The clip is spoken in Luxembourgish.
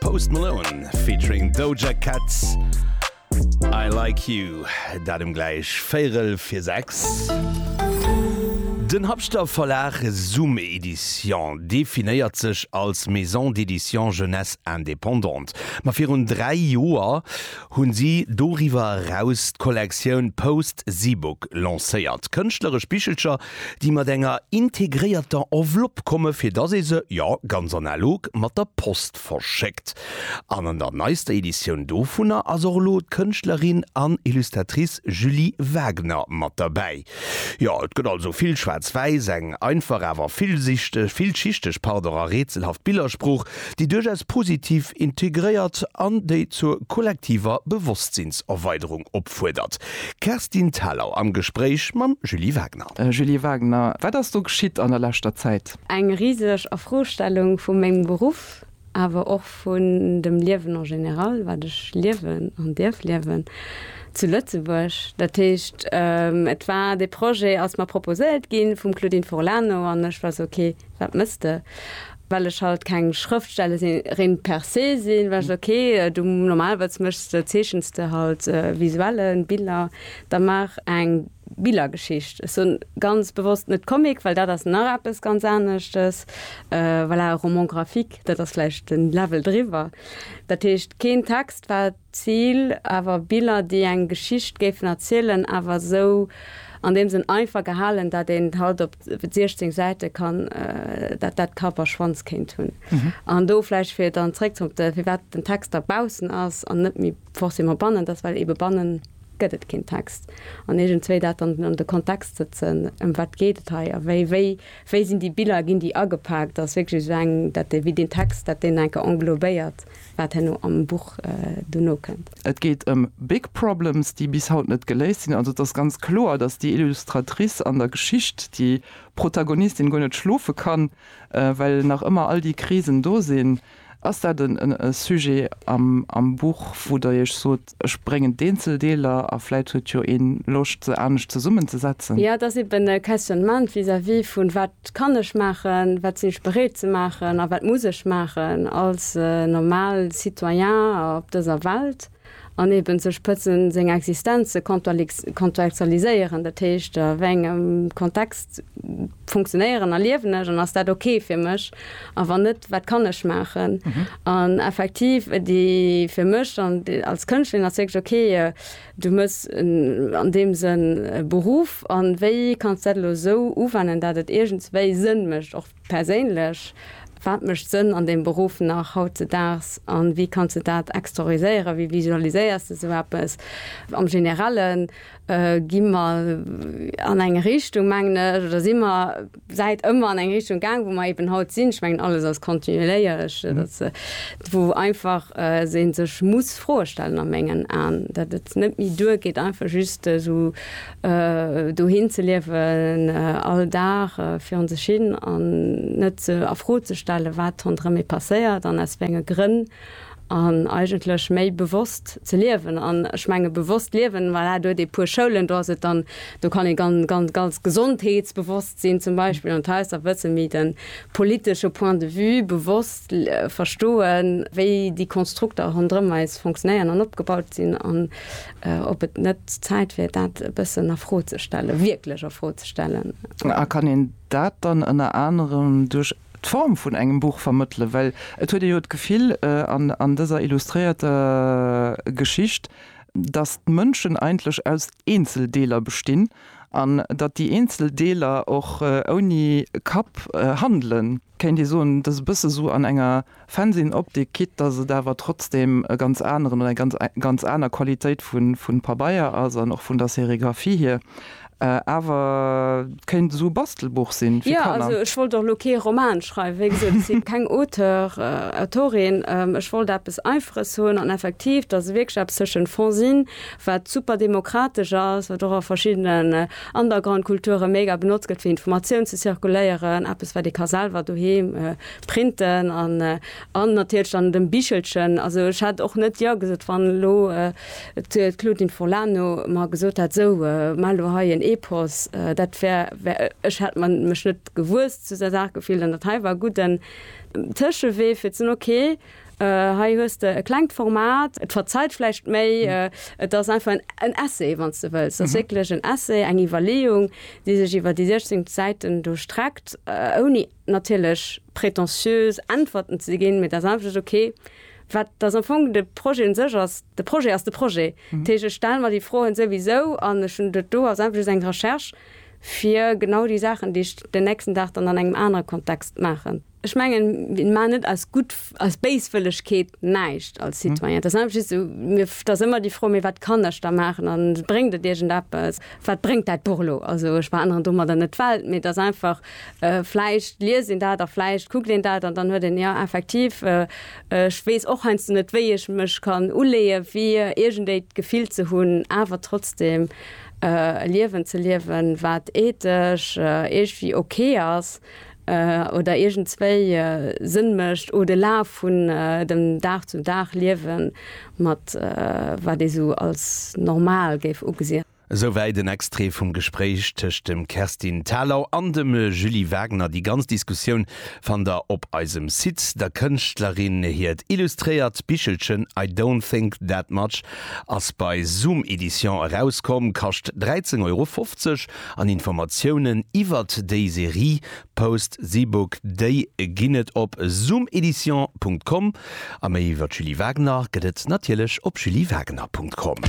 Post Malone featuring Doja Cat I like you dat um gläich véierel fir 6. Den Habschter Verlag Zoom Edition definéiert sech als Maison d'édition jeunesse indépendante. Ma virun 3 Joer hu si doriwwer eraus d'Kollektioun Post Zeebook lancéiert. Kënschtleresch Bichelcher déi mat enger integréierter Enveloppe komme fir datt ee se, jo, ganz analog, mat der Post verschéckt. An an der neister Editioun dovunner ass och elo d'Kënschtlerin an Illustratrice Julie Wagner mat derbäi. Jo, et gëtt also vill schwaarz-wäiss, eng einfach awer villsichteg, villschichteg, pardon, a rätselhaft Billersprooch. déi duerchaus positiv integréiert an déi zur kollektiver Bewosstsinns-Erweiderung opfuerdert. Kerstin Thalau am Gespréich mam Julie Wagner. Julie Wagner, Wat ass do geschitt an der leschter Zäit? Eng riseg Erfrostellung vu mengem Beruff, awer och vun dem Liewen en général, wat ech liewen an dierf liewen zu Lëtzebuerg. Dat heescht, et war, dee Projet ass mer proposéiert ginn vum Claudine Furlano an ech war sou, ok, wat mëss de? well ech halt keng Schrëftstellerin per se sinn, war ech ok, du normalerweis méchs de, zeechens de halt Visuellen, Biller, da maach eng Billergeschicht. Ech soen ganz bewosst net Comic, well dat ass nach eppes ganz aneschtes, voilà, Roman graphique, dat ass vläicht den Level driwwer, dat heescht keen Text wat, Zil, awer Biller déi eng Geschicht géifen erzielen, awer esou an deem Sënn einfach gehalen, dat een et halt op 16 Säite kann, dat dat Kapp a Schwanz kéint hunn. An do vläicht fir dann zréck zum op de firwat den Text da baussen ass an net méi forcément bannen, dass well ebe bannen gëtt et keen Text an iergendzwéi dat dann an de Kontext sëtzen, ëm wat geet et hei a wéi wéi wéi sinn déi Biller, ginn déi agepaakt, ass wierklech esou eng dat dee wéi deen Text dat deen enke englobéiert. wat herno am Buch dono kënnt. Et geet ëm big problems, déi bis haut net geléist sinn. Also et ass ganz kloer, datt déi Illustratrice an der Geschicht, déi Protagonistin, guer net schlofe kann, well nach ëmmer all déi Krisen do sinn. Ass dat e Sujet am Buch, wou Der Iech sot, Ech bréngen d'eenzel Deeler a vläit huet jo een Loscht se anescht zesummenzesetzen. Ja, et ass eben e Questionnement vis-à-vis vun, Wat kann ech maachen, wat sinn ech bereet ze maachen a wat muss ech maachen als normal Citoyen op dëser Welt? An eben ze spëtzen, seng Existenz ze kontextualiséieren, dat heescht, a wéi engem Kontext funktionéieren a liewen ech an ass dat ok fir mech a wann net wat kann ech maachen an effektiv déi fir mech an als Kënschtlerin ass wierklech ok du hues an deem Sënn e Beruff an wéi kanns dat elo esou uwennen dat et iergendswéi Sënn mécht och perséinlech, wat mécht Sënn an deem Beruff nach hautzedaags an wéi kanns de dat extroriséieren, wéi visualiséiers de esou eppes am Generellen? Gi mer an eng Richtung, mengen ech, oder si mer säit ëmmer an eng Richtung gaang, wou mer eeben haut sinn. Ech mengen, alles ass kontinueléierlech, datt wou einfach ee sech muss Froe stellen a mengen Aen, datt et net méi duergeet, einfach just esou dohin ze liewen, all Dag virun sech hin an net a Fro ze stellen, wat ronderëm ee passéiert an aus wéi enge Grënn. an eigentlech méi bewosst ze liewen an ech menge bewosst liewen, voilà, do huet ee puer Schoulen, do ass et dann, do kann ee gan, gan, ganz gesondheetsbewosst sinn zum Beispill an d'Haus a wësse méi de politesche Point de vue bewosst verstoen, wéi déi Konstrukter ronderëm eis fonctionnéieren an opgebaut sinn an ob et net Zäit wier, dat e bëssen a Fro ze stellen, wierklech a Fro ze stellen. A kann een dat dann ënner anerem duerch d'Form vun engem Buch vermëttele, well et huet ee jo d'Gefill an dëser illustréierter Geschicht, datt d'Mënschen eigentlech aus Eenzeldeeler bestinn an datt déi eenzel Deeler och ouni Kapp handelen, kéint ee soen, datt e bësse sou an enger. Fennsinn Optik quitt dass et awer trotzdem e ganz aneren oder eng ganz aner Qualitéit vun Pabeier ass an och vun der Sérigraphie hier. Awer et kéint esou e Bastelbuch sinn fir Kanner. Jo also ech wollt och elo kee Roman schreiwen, wéi gesot ech sinn keng Auteur, Autorin. Ech wollt eppes Einfaches hunn an effektiv dass e wierklech eppes tëschent Fennsinn wat super demokratesch ass, wat och a verschiddenen Undergroundkulture mega benotzt gëtt fir Informatioun ze zirkuléieren, eppes wat ee ka selwer doheem Printen an an natierlech dann dem Bichelchen. Also ech hätt och net jo gesot, wann elo d'Claudine Furlano mer gesot hätt, esou maach elo hei en Epos. Dat wär, ech hätt mer mech net gewuess zu der Saach gefillt an dat hei war e gudden Tëschewee fir ze soen, okay, hei hues de e klengt Format, et verzeiht vläicht méi, et ass einfach en Essay, wann s de wëlls. Et ass wierklech en Essay, eng Iwwerleeung, déi sech iwwer déi 16 Säiten do streckt, ouni, natierlech pretentiös Äntwerten ze ginn, mee dat ass einfach net ok. Wat ass am Fong de Projet u sech ass, de Projet ass de Projet. Dat heescht, ech stelle mer déi Froen souwisou an ech hunn dat do als einfach just eng Recherche fir genau déi Saachen, déi ech den nächsten Dag dann an engem anere Kontext maachen. Ech mengen, mir maachen net aus gutt als Béiswëllegkeet näischt als mhm. Citoyen. Das einfach just so, mir, das ëmmer déi Fro, mir wat kann ech da maachen an bréngt et Dir Appppes, wat bréngt dat Burlo? Also ech war anderen dummer der net Welt, mir das einfach äh, fleicht liesinn dat der fleicht kuckt den dat an dann huet den ja effektiv äh, äh, ech wees och heinst du net wéi ech mech kann uleeë wie irgendéit gefiel ze hunn, awer trotzdem äh, Liewen ze liewen, wat etesch äh, eech wie okay ass. oder iergendzwéi Sënn mécht, o de Laf vun dem Dag zum Dag Liewe mat wat ee sou als normal géif ugesi. Esouwäit en Extrait vum Gespréich tëscht dem Kerstin Thalau an dem Julie Wagner. Déi ganz Diskussioun fannt der op eisem Site. Der Kënschtlerin hiert illustréiert Bichelchen I don't think that much ass bei Zoom Edition erauskomm, kascht 13,50 Euro. An Informatiounen iwwert déi Serie Post The Book Day ginn et op zoomedition Punkt com a méi iwwert Julie Wagner gëtt et natierlech op juliewagener Punkt com.